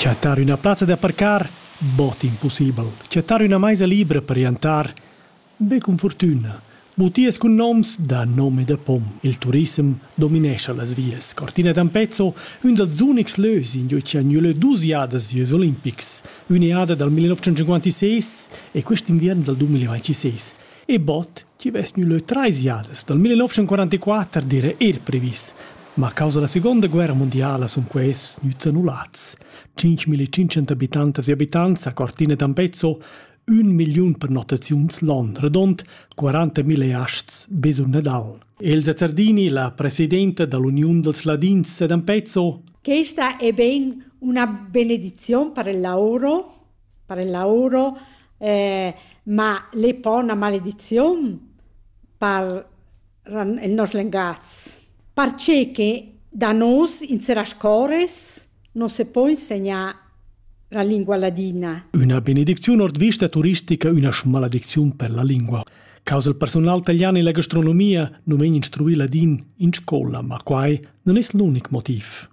Chattar üna plazza da parcar bod impussibel. Chattar üna maisa libra per chiantar be cun furtüna. Butias cun noms da nom e da pom. Il turissem dominescha las vias. Cortina d'Ampezzo, ün dals unics lös ingio chi ha gnü lö duos jadas gieus olimpics. Ün'eada dal 1956 e quist inviern dal 2026. e bot chi vess gnü lö trais jadas dal 1944 d'eira eir previs. Ma a causa da Segonda guerra mundiala sun quaists gnüts annullats. 5.500 abitantas e abitants a Cortina d'Ampezzo, ün milliun prenotaziuns l'on, redond 40.000 asts be sur Nadal. Elsa Zardini, la presidenta dall'Uniun dals Ladins ed Ampezzo. Questa è ben una benedizione per il lavoro per il lavoro, ma l'ei pa üna malediziun per il nos lengatgs, perche da nus in seras cores non se po insegnar la lingua ladina. Üna benedicziun ord vista turistica üna schmaladicziun per la lingua. Causa il personal italian e la gastronomia non vegn instruì ladin in scola, ma quai non es l'unic motiv.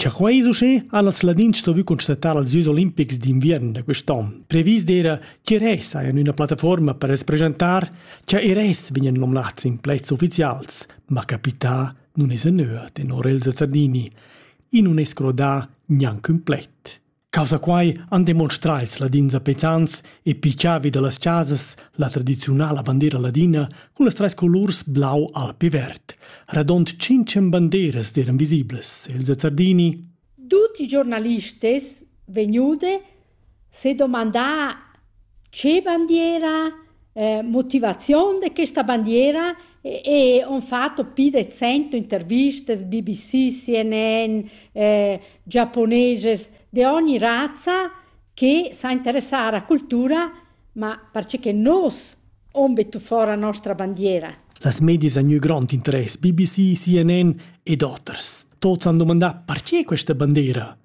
Cha quai es uschè ha las Ladins stuvü constatar als Jeux olimpics d'inviern da quist'on. Previs d'eira ch'Ires hajan üna plattafuorma per represchentar chaIres vegnan nomnats in plets ufficials, ma capità nun esa nua tenor Elsa Zardini. I nun es crodà gnanc ün pled. Causa quai han demonstrà ils ladins apetans e pichavi da las chasas la tradiziunala bandiera ladina cun las trais colurs blau, alp e verd. Radond tschintschen bandieras eran visiblas. Elsa Zardini. Tutti i giornalisti vegnude se domandar Che bandiera, motivaziun da questa bandiera e ho fatto pü de cento intervistas BBC, CNN, giaponeses de ogni razza che sa interessar a cultura, ma perche nos hon bettu fora nostra bandiera. Las medias han gnü grond interess, BBC, CNN ed oters. Tuots han dumandà perche questa bandiera?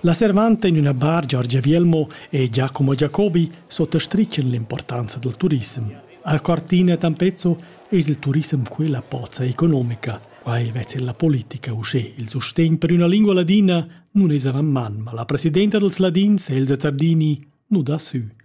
La servanta in üna bar Giorgia Vielmo e Giacomo Jacobi sottastritschen l'importanza dal turissem. A Cortina Tampezzo es il turissem quella pozza economica. Quai vezza la politica uschè. Il sustegn per üna lingua ladina nun es avant man, ma la presidenta dels ladins, Elsa Zardini, nu dà sü.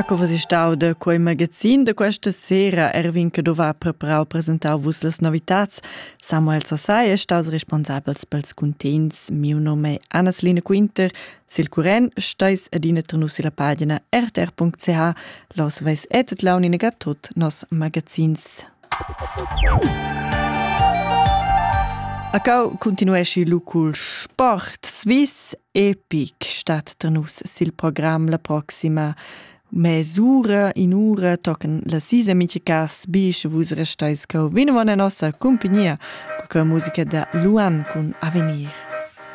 Ecco was ist stau de quei magazin de questa sera Erwin che doveva preparau presentar vus les novitats Samuel Sasai è staus responsabels pels contents miu nome Annas Line Quinter Sil curren steis adina ternus illa pagina rtr.ch. Los veis etet launina tut nos magazins. A cau continuesci lu cul sport Swiss Epic stat ternus sil program la proxima mesura in ura tocan la sisa mice cas bis vus restais cau vino an nossa compagnia cu musica da Luan cun Avenir.